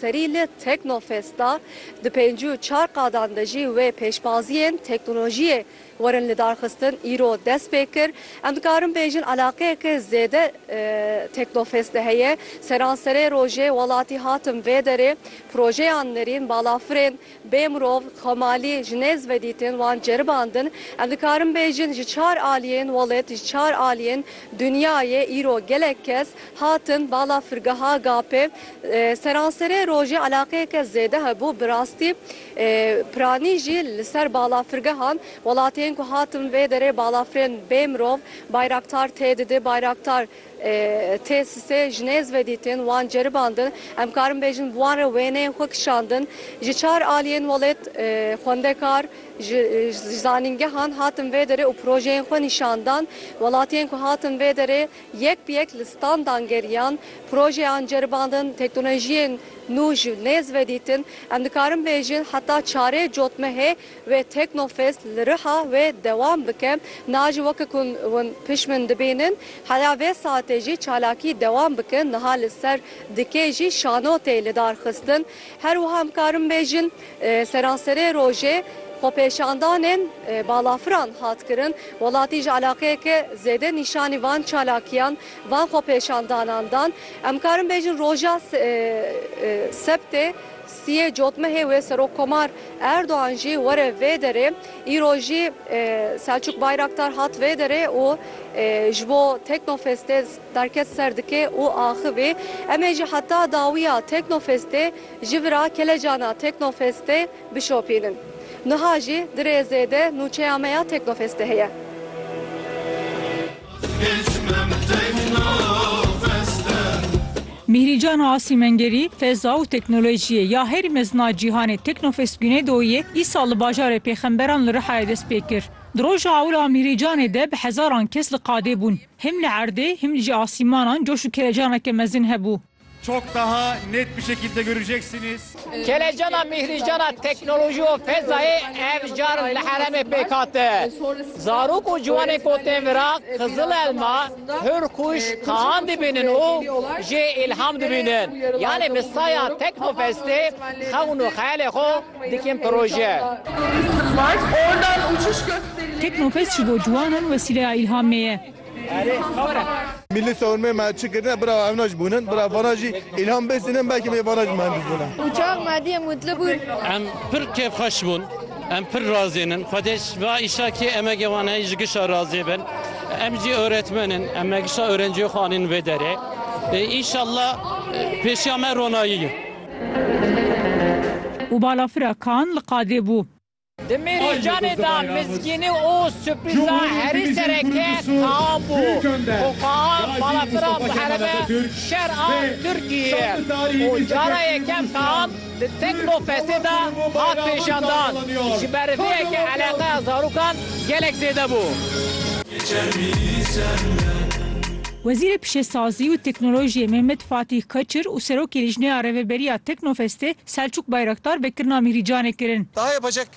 Serî li Teknofest da di pêncî û çar qadan de jî wê pêşbaziyên teknolojiyê werin lidarxistin îro dest pê kir. Em dikarin bêjin eleqeyeke zêde Teknofestê heye. Seranserê rojê welatî hatin vê derê projeyan nirîn, balafirên Bê mirov, xemalî, ji nêz vedîtin, wan ceribandin. Em dikarin bêjin ji çar aliyên welat, ji çar aliyên dinyayê îro gelek kes hatin bala firgeha GAP'ê. Seranserê rojê eleaqeyeke zêde hebû. Bi rastî piranî jî li ser bala firgehan welatiyên ku hatin vê derê balafirên bê mirov, Bayraktar tê didi, Bayraktar Têsîsê ji nêz ve dîtin, wan ceribandin. Em karin bêjin bi wan re wêneyên xwe kişandin. Ji çar aliyên welêt xwendekar ji zanîngehan hatin vê derê û projeyên xwe nîşan dan. Welatiyên ku hatin vê derê yek bi yek li standan geriyan, projeyan ceribandin, teknolojiyên nû ji nêz ve dîtin. Em dikarin bêjin heta çarê cotmehê, Wê Teknofest li Riha wê dewam bike. Niha jî weke ku hûn pişmin dibînin, heya vê saetê jî çalakî dewam bikin. Niha li ser dikê jî şano tê lidarxistin. Her wiha em karin bêjin seranserê rojê xwepêşandanên balafiran hat kirin. Welatî ji eleqeyeke zêde nîşanî van çalakiyan, van xwepêşandanan dan. Em karin bêjin roja sebtê. Sî yê cotmehê wê Serokkomar Erdogan jî were vê derê. Îro jî Selçuk Bayraktar hat vê derê û ji bo Teknofestê derket ser dikê û axivî. Em ê jî heta dawiya Teknofestê ji vir a kelecana Teknofestê bişopînin. Niha jî di rêzê de nûçeya me ya Teknofestê heye. Mîhrîcan Asî Mengerî, Feza û Teknolojiyê ya herî mezin a cîhanê Teknofest Güneydoğu'yê îsal li bajarê Pêxemberan li Rihayê dest pê kir. Di roja ewil a Mîhrîcanê de bi hezaran kes li qadê bûn. Him li erdê, him jî asîmanan coş û kelecaneke mezin hebû. Çok daha net bir şekilde göreceksiniz. Kelecana Mihricana teknoloji û fezayê ev car li heremê pêk hate. Zarok û ciwanên ku tên vira Qizil Elma, Hurkuş, Kaan dibînin û jê îlham dibînin. Yanê bi saya Teknofestê xewn û xeyalê xwe dikin proje. Teknofest ji bo ciwanan wesîleya îlhamê ye. Milli Savunmê me çi kirine bira evna jî bûnin. Bira vana jî îlham bêstînin belkî bê vana jî mihendis bûne. Uçax Mehdiye Mutlu bûn. Em pir kêfxweş bûn. Em pir razîn in. Xwedê ji va îşa kê emegê wan heye ji gişa razî bin. Em jî oretmen in. Em megişa orenciyê xwe anîn vê derê. Înşallah pêşiya me ronayî ye. Û balafira kan li qadê bû. Di mêrûcanê de mizgînî û surprîza herî sereke tam bû ku Kaan balafira muherebe şer a Tirkiyeyê ye û cara yekem Kaan di Teknofestê de hat pêşandan. Ji ber vê yekê eleqeya zarokan gelek zêde bû. Wezîrê Pişesazî û Teknolojiyê Mehmet Fatîh Kaçir û Serokê Lîjneya Rêveberiya Teknofestê Selçûk Bayraktar vekirina Mîhrî Canê kirin. Tahayê Paşek.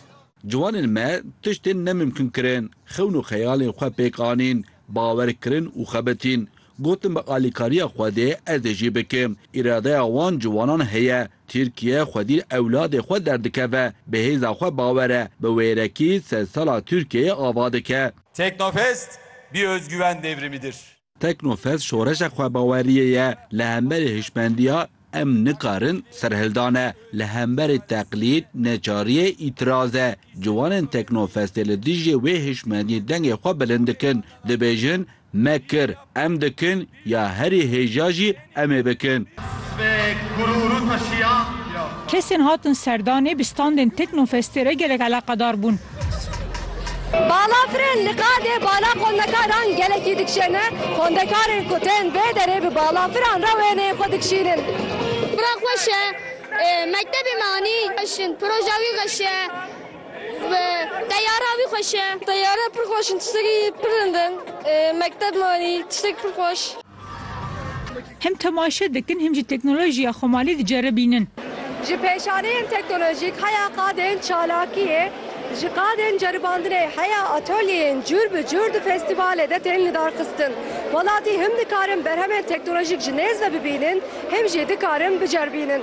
Ciwanên me tiştên nemimkun kirin, xewn û xeyalên xwe pêk anîn, bawer kirin û xebitîn. Gotin bi alîkariya Xwedê ez dê jî bikim. Îradeya wan ciwanan heye. Tirkiye xwedî li ewladê xwe derdikeve, bi hêza xwe bawer e, bi wêrekî sedsala Tirkiyeyê ava dike. Teknofest bir özgüven devrimidir. Teknofest şoreşa xwebaweriyê ye li hemberî hişmendiya Em nikarin serhildan e, li hemberî teqlîd, neçariyê, îtiraz e. Ciwanên Teknofestê li dijî wê hişmendiyê dengê xwe bilind dikin, dibêjin, Me kir, em dikin ya herî hêja jî Em ê bikin. Kesên hatin serdanê bi standên Teknofestê re gelek eleqedar bûn. Balafirên li qadê bala xwendekaran gelekî dikişêne, xwendekarên ku tên vê derê bi balafiran re wêneyên xwe dikişînin. Pira xweş e. Mektebê me anî. Xweş in. Proja wî xweş e. Teyara wî xweş e. Teyara pir xweş in. Tiştekî pir rind in. Mekteb me anî. Tiştekî pir xweş. Him temaşe dikin him jî teknolojiya xwe malê diceribînin. Ji pêşaneyên teknolojîk heya qadên çalakiyê, ji qadên ceribandinê heya atolyeyên cûr bi cûr di festîvalê de tên lidarxistin. Welatî him dikarin berhemên teknolojîk ji nêz ve bibînin him jî dikarin biceribînin.